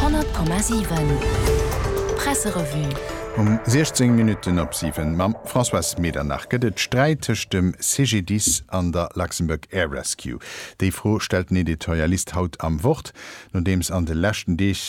100,7 Presserevue. Um 16 Minutten op 7 mam Françoise Medernach. Gëtt et Sträit tëscht dem CGDIS an der Luxembourg Air Rescue? Déi Fro stellt den Editorialist haut am Wort, nodeems an de leschten Deeg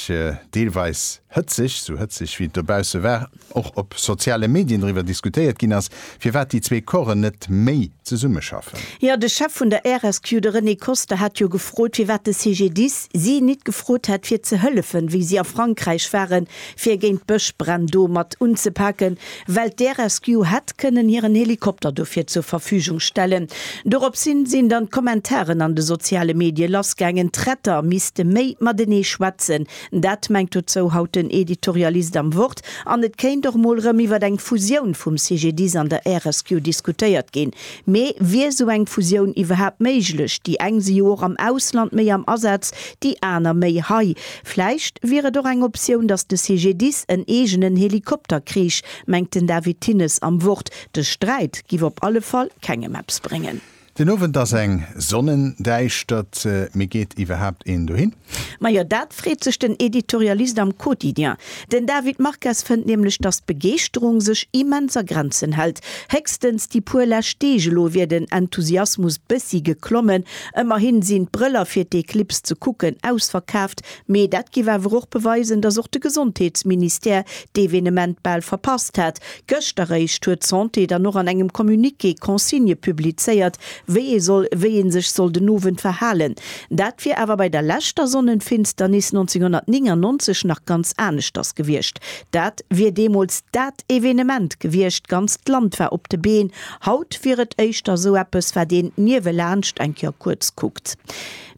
deelweis hëtzeg, sou hëtzeg wéi et dobausse war, och op soziale Medien driwwer diskutéiert ginn ass, firwat déi zwee Corpsen net méi zesummeschaffen. Jo, de Chef vun der RSQ, de René Koster, hat jo gefrot, firwat de CGDIS si nit gefrot hätt, fir ze hëllefen, wéi si a Frankräich waren, fir géint d'Bëschbränn do mat unzepaken, well d'RSQ hätt kënnen hiren Helikopter dofir zur Verfügung stellen. Doropshin sinn dann d'Kommentaren an de soziale Medie lassgaangen, d'Retter misste méi matenee schwätzen, Dat mengt dozou haut den Editorialist am Wort. An et kéint och mol rëm iwwert eng Fusioun vum CGDIS an der RSQ diskutéiert ginn. Mee wier esou eng Fusioun iwwerhaapt méiglech? Déi eng si jo och am Ausland méi am Asaz, déi aner méi hei. Vläicht wier et och eng Optioun, datt de CGDIS en eegenen Helikopter kriich, mengt den David Thinnes am Wort. De Sträit giff op alle Fall kengem eppes bréngen. Den Owend ass eng Sonnendäischtert, mee geet iwwerhaapt een dohin? Majo, dat freet sech den Editorialist am Quotidien. Den David Marques fënnt nämlech, datt d'Begeeschterung sech immens a Grenzen hält. Héchstens déi puer lescht Deeg elo wier den Enthusiasmus bëssi geklommen. Ëmmerhi sinn d'Brëller fir d'Eclipse ze kucken ausverkaaft. Mee dat géif awer och beweisen, datt och de Gesondheetsministère d'Evenement bal verpasst hätt. Gëscht eréischt huet d'Santé dann och an engem Communiqué d'Consignë publizéiert, wéi ee soll, wéi ee sech soll den Owend verhalen. Dat wier awer bei der leschter Sonnenfinsternis 1999 nach ganz aneschters gewiescht. Dat wier deemools dat Evenement gewiescht, ganz d'Land war op de Been. Haut wier et éischter esou eppes, wat een niewelaanscht eng Kéier kuerz kuckt.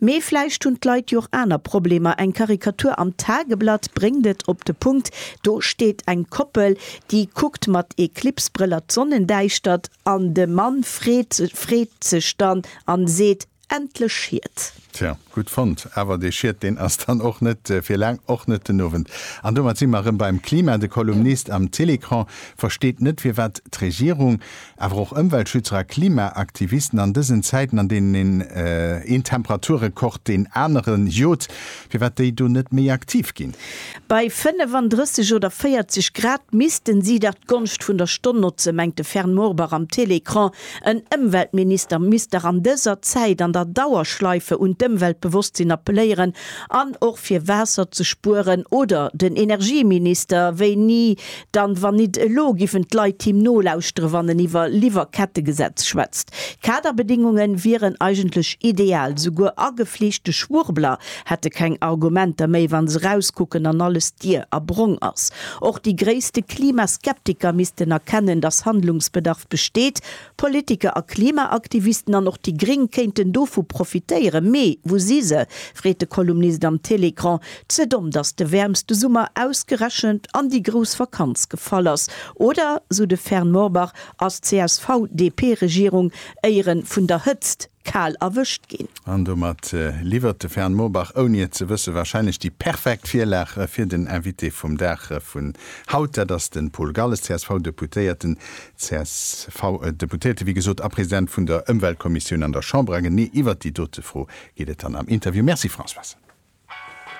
Mee vläicht hunn d'Leit jo och aner Problemer. Eng Karikatur am Tageblatt bréngt et op de Punkt, Do steet eng Koppel, déi kuckt mat Eclipse-Brëller d'Sonnendäischtert an de Mann freet freet sech dann an seet, Endlech Schied! Tja, gutt fonnt. Awer dee Schied, deen ass dann och net fir laang, och net den Owend. An domat si mer erëm beim Klima. De Kolumnist am Télécran versteet net, firwat d'Regierung Awer och Ëmweltschützer a Klimaaktivisten an dësen Zäiten, an deenen een een Temperaturrekord deen anere jot, firwat déi do net méi aktiv ginn? Bei 35 oder 40 Grad missten si dach d'Gonscht vun der Stonn notzen, mengt de Fern Morbach am Télécran. En Ëmweltminister misst dach an dëser Zäit an der Dauerschleife un d'Ëmweltbewosstsinn appelléieren an och fir Waasser ze spueren. Oder den Energieminister, wéini Dann wann nit elo giffen d'Leit him nolauschteren wann en iwwer Liwwerkettegesetz schwätzt. Kaderbedingungen wieren eigentlech ideal. Souguer agefleeschte Schwurbler hätte keng Argumenter méi wann se rauskucken an alles dier a brong ass. Och déi gréisste Klimaskeptiker missten erkennen dass Handlungsbedarf besteet. Politiker a Klimaaktivisten an och déi Gréng kéinten dovu profitéieren. Mee wou si se? freet de Kolumnist am Télécran. Ze domm, datt de wäermste Summer ausgerechent an déi grouss Vakanz gefall ass? Oder, sou de Fern Morbach, ass d'CSV-DP-Regierung éiere vun der Hëtzt? kal erwëscht ginn. An domat liwwert de Fern Morbach, ouni et ze wëssen, warscheinlech déi perfekt Virlag fir den Invité vum Dag vun haut. Dat ass de Paul Galles, CSV-Deputéierten, CSV-Deputéierte wéi gesot, a President vun der Ëmweltkommissioun an der Chamber. A genee iwwert déi dote Fro geet et dann am Interview. Merci Françoise.